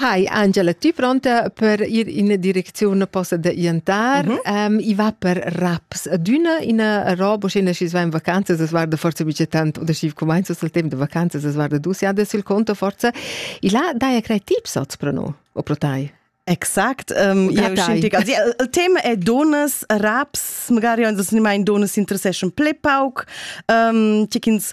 Hi Angela, ti pronta per ir in direcziun posta da iantar. Mm -hmm. um, I va per raps adüna ina roba, sch'ina schi's va in vacanzas, es guarda forza bice tant, oder schi cumainza sul temp da vacanzas, es guarda dus jada sul conto forza. I là daja crei tips hoz pro no, o pro tai? Exakt, um, eu scintich. Also, il tema è donas, raps, magari uns ma in donas interesseschan ple pauc, um, ti ch'ins